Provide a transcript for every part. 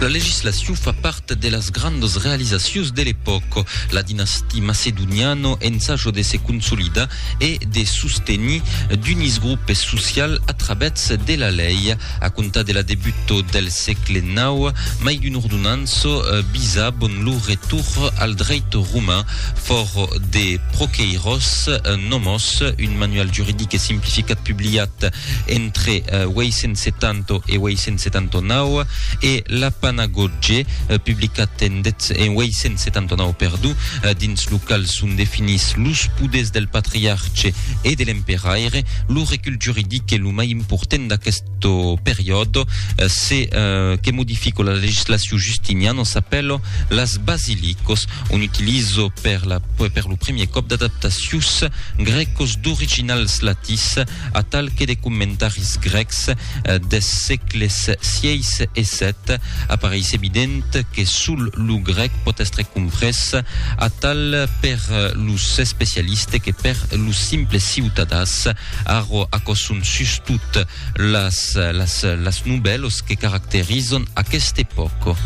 La legislacion fa part de las grandas realizacions de l'epòca. La dinastia macedoniana ensaja de se consolidar e de sostenir d'unis grupes socials a travèths de la lei. A comptar de la debuta del sègle nau, mai d'una ordonança bisabon lo retorn al dreit roman. Fòra de proqueiròs nomós, un manual juridic e simplificat publiat entre 870 1879 e La Panagotge, publicat en 1879 perdó, dins lo qual son definits los poders del patriarche e de l'emperaire. Lo recul juridic es lo mai important d'aquest periòde, se que modifico la legislacion justiniana s'apèlo las basilicos, on utilizo per lo premier còp d'adaptacions grècos d'originals latís, atal que de commentaris grècs des sègles sièis e sèt, apareis evident que sol lo grèc pòt èstre comprés, atal per los especialistes que per los simples ciutadans. Arro aquò son sustot las las las nubèlos que caracterizon aquesta epòca.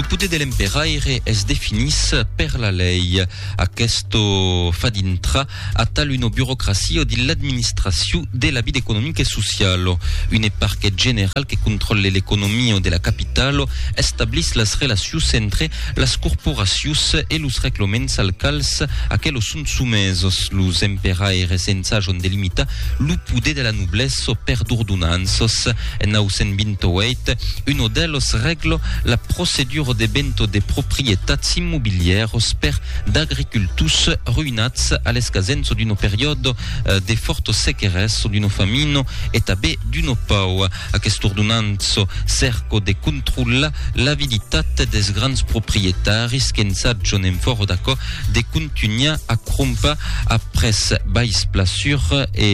Lo poder de l'emperaire es definís per la lei. Aquesto fa dintra a tal una burocracia dins l'administracion de la vida economica e sociala. Une parquet general que contròlle l'economia de la capitala establís las relacions entre las corporacions e los reglaments als quals aquelos Son somesos los emperaires ensajon de limitar lo poder de la noblessa per d'ordonanças. En 928, uno d'elos regla la procedura de venta de proprietats immobilièras per d'agricultors ruïnats a l'escasença d'una periòda de fòrta sequeressa, d'una famina e tanben d'una pau. Aquest ordonant çò cerco de controllar l'avilitat des grands proprietaris que ensatjon en fòro d'aquò de contunhar a crompar a près bais plasur e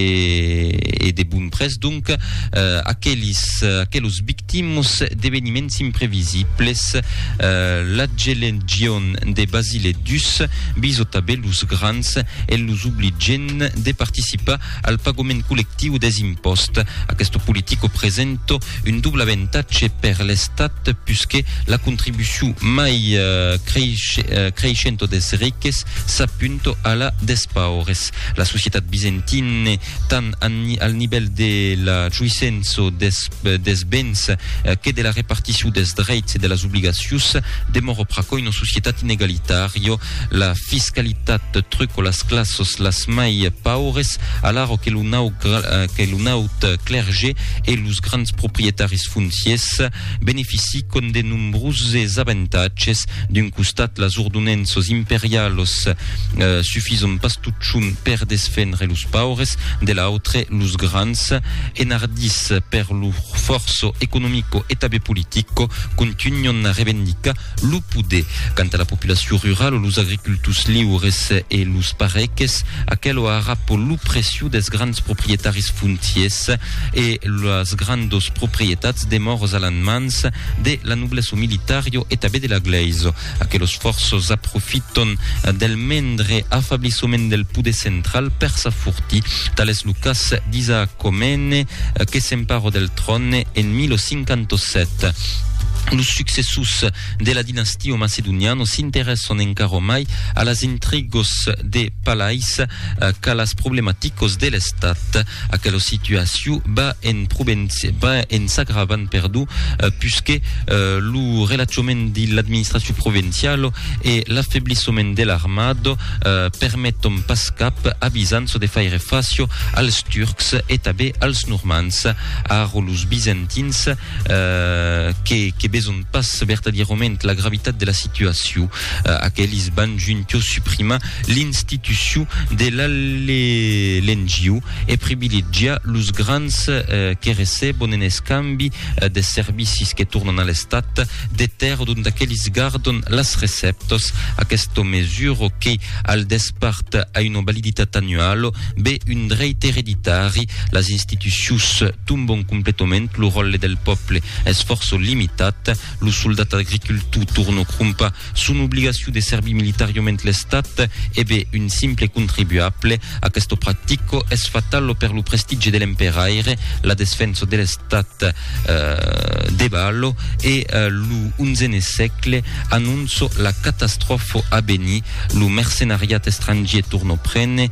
e de bon près donc aquelis aquelos victimos d'eveniments imprevisibles la gelegion de Basile dus bisotave los grands en los obligent de participar al pagament collectiu des impòsts. Aqueste politico presenta un doble avantatge per l'Estat puisque la contribucion mai creishenta des riques s'apunta a la des paures. La societat bizantina, tant al nivèl de la joissença des bens que de la reparticion des dreits e de las obligacions, demòra pr'aquò una societat inegalitària. La fiscalitat truco las classos las mai paures, alaro que lo nau que lo naut clergé e los grands proprietaris fonciers beneficicon de nombroses avantatges. D'un costat, las ordonenços imperialos sufison pas totjorn per desfendre los paures, de l'autre, los grands, enardits per lor forço economico e tabé politico, contunhon a revendicar Lo poder. Quant a la populacion ruralo, los agricultors liures e los pareques, aquelo ara po lo preciu des grands proprietaris fontiers e las grandos proprietats demòros a lan mans de la nobleso militario e tabé de la glaiso. Aquelos fòrços aprofiton del mendre afablissoment del poder central per s'afortir. Tal es lo cas d'Isaac Comene que s'emparo del tròne en 1057. Los successors de la dinastia macedoniana s'interèsson encara mai a las intrigos de palais qu'a las problematicos de l'estat. Aquela situacion va en provenci- va en s'agravant, perdon, puisque lo relaxament de l'administracion provinciala e l'affeblissement de l'armada permeton pas cap a Bizanço de faire fàcia als Turcs e tanben als Normands. Ara los Bizantins que que beson pas vertadierament la gravitat de la situacion. Aquelis van juntios suprimar l'institucion de l'allelengiu e privilegiar los grans que recebon en escambi de servicis que tornan a l'Estat de tèrra dont aquelis gardon las recèptas. Aquesta mesura que, al despart, a una validitat annuala, be un dreit ereditari, las institucions, Tombon completament lo ròtle del pòple, es fòrço limitat, lo soldat agricultor torno crompa son obligacion de servir militariament l'estat e be un simple contribuable, aquesto practico es fatalo per lo prestigi de l'emperaire, la desfensa de l'estat debalo e lo onzene sègle anonço la catastròfo a venir, lo mercenariat estrangier torno prene